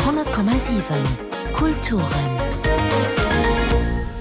100,7 Kulturen.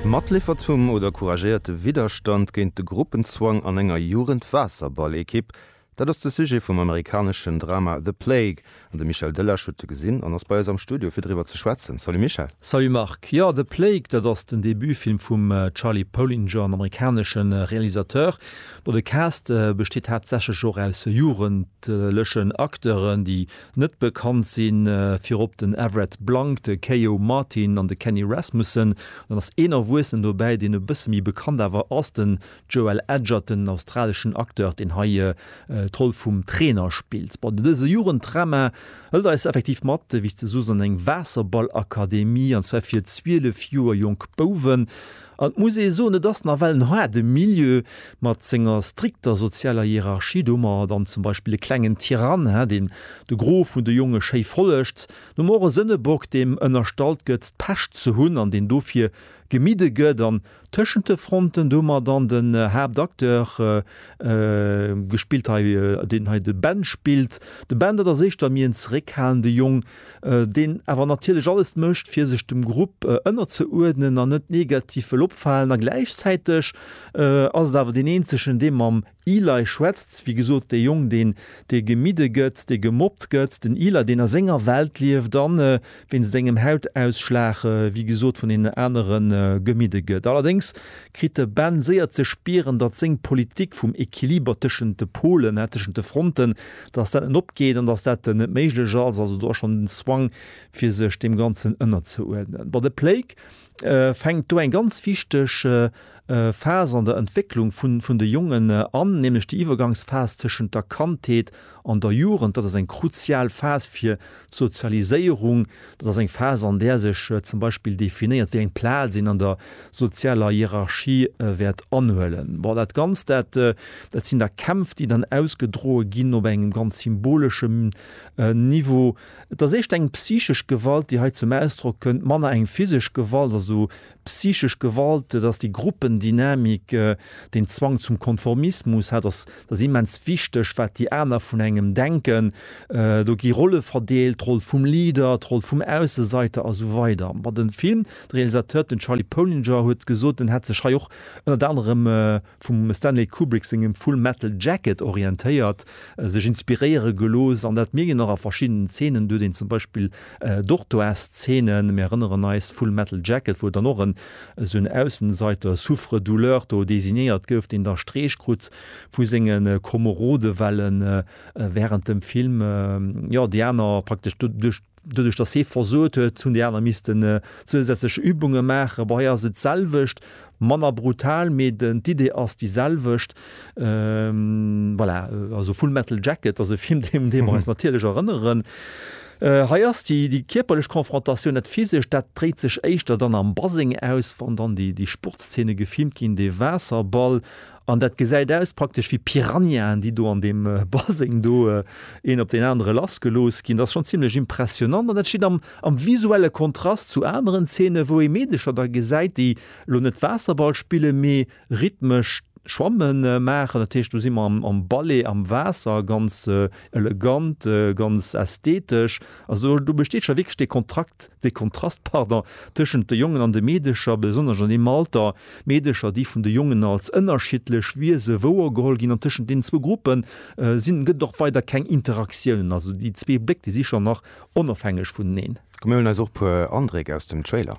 Matliffert vum oder couragéierte Widderstand géint de Gruppenzwang an enger Jugendwaasserball-Ekipp, dat ass de Sujet vum amerikaneschen Drama The Plague. An de Michel Delage huet e gesinn an ass bei eis am Studio fir driwwer ze schwätzen. Salut Michel. Salut Marc. Jo, The Plague, dat ass den Debutfilm vum Charlie Polinger, en amerikanesche Realisateur. Bon, de Cast besteet haaptsächlech och aus jugendlechen Acteuren, déi net bekannt sinn, virop den Everett Blanc, de Keio Martin an de Kenny Rasmussen. Dann ass een Erwuessenen dobäi, deen e bësse méi bekannt awer ass, den Joel Edgerton, en australeschen Acteur, deen hei d'Roll vum Trainer spillt. Bon, dëse Jugenddrama hëlt eis effektiv mat, wéi s de soos, an eng Waasserballakademie, an zwar fir 12 Joer jonk Bouwen. An et muss ee soen, et ass nawell en haarde Milieu mat senger strikter sozialer Hierarchie. Do hu mer dann zum Beispill e klengen Tyrann, deen de Gros vun de Jonge schéi follegt. Dann hu mer och e Sënnebock, deem ënnerstallt gëtt, d'Pescht ze hunn an deen dofir gemidde gëtt. An tëschent de Fronten, do hu mer dann den Haaptacteur, gespillt hei, deen hei de Ben spillt. De Ben, dat ass éischter méi en zeréckhalende Jong. deen awer natierlech alles mécht fir sech dem Grupp ënnerzeuerdnen an net negativ wëll opfalen a gläichzäiteg ass et awer deen eenzegen dee mam Eli schwätzt, wéi gesot dee Jong deen dee gemidde gëtt, dee gemobbt gëtt, den Eli deen a senger Welt lieft an wéinst engem Hautausschlag wéi gesot vun deenen anere gemidde gëtt. Allerdéngs kritt de Ben séier ze spieren, datt seng Politik vum Equiliber tëschent de Polen, tëschent de Fronten, dass dat net opgeet an dass dat net méiglech ass, also do ass schonn den Zwang, fir sech deem Ganzen ënnerzeuerdnen. Bon, de PLAKE fänkt do eng ganz wichteg Phas an der Entwécklung vun de Jongen an, nämlech déi Iwwergangsphas tëschent der Kandheet an der Jugend. Dat ass eng kruzial Phas, fir D'Sozialiséierung, dat ass eng Phas, an där sech zum Beispill definéiert, wéi eng Plaz een an der sozialer Hierarchie wäert anhuelen. Bon, dat Ganzt, dat, dat sinn da Kämpf, déi dann ausgedroe ginn op engem ganz symboleschem Niveau. Et ass éischter eng psychesch Gewalt, déi hei zum Ausdrock kënnt, manner eng physesch Gewalt, also Psychesch Gewalt, et ass déi Gruppendynamik, deen Zwang zum Konformismus, hat ass ass immens wichteg, wat déi aner vun engem denken. Do gi Rolle verdeelt, d'Roll vum Leader, d'Roll vum Ausseseiter a sou weider. Ma de Film, de Realisateur, den Charlie Polinger huet gesot, en hätt sech hei och ënnert anerem vum Stanley Kubrick sengem Full Metal Jacket orientéiert, sech inspiréiere gelooss an dat mierkt een och a verschiddenen Zeenen, do huet een zum Beispill Dortoirs-Zeenen, mir erënneren eis Full Metal Jacket, wou dann och en esou en Aussenseiter, Souffre-douleur do designéiert gouf, deen da Streech krut vu senge Komerode well e wärend dem Film, jo, déi aner praktesch duerch. Doduerch, dass hee versot huet, hunn déi aner missten zousätzlech Übunge maachen. Bon, hei ass et d'selwecht, manner brutal, mee d'Idee ass déi selwecht. Voilà, also Full Metal Jacket ass e Film, un dee mer eis natierlech erënneren. Hei ass déi kierperlech Konfrontatioun, dat Physescht, dat dréit sech éischter dann am Baseng aus, wann dann déi Sportszene gefilmt ginn, dee Waasserball. An dat gesäit aus praktesch wéi Piranhaen, déi do an deem Baseng do een op deen anere lass gelooss ginn. Dat ass schonn zimlech impressionnant. An dat steet am am visuelle Kontrast zu aneren Zeene wou ee Meedecher da gesäit, déi elo net Waasserball spillen, mee rhythmesch d'Schwamme maachen. Dat heescht do si mer am Ballet am Waasser, ganz elegant, ganz ästhetesch. Also do besteet scho wierklech dee Kontrakt, dee Kontrast, pardon, tëschent de Jongen an de Meedecher, besonnesch an deem Alter. D'Meedecher, déi vun de Jongen als ënnerschiddlech Wiese wouergeholl ginn, an tëschent deenen zwou Gruppe sinn, gëtt et och weider keng Interaktiounen. Also déi zwee Bléck, déi si schonn nach onofhängeg vuneneen. Komm mir huelen eis och e puer Andréck aus dem Trailer.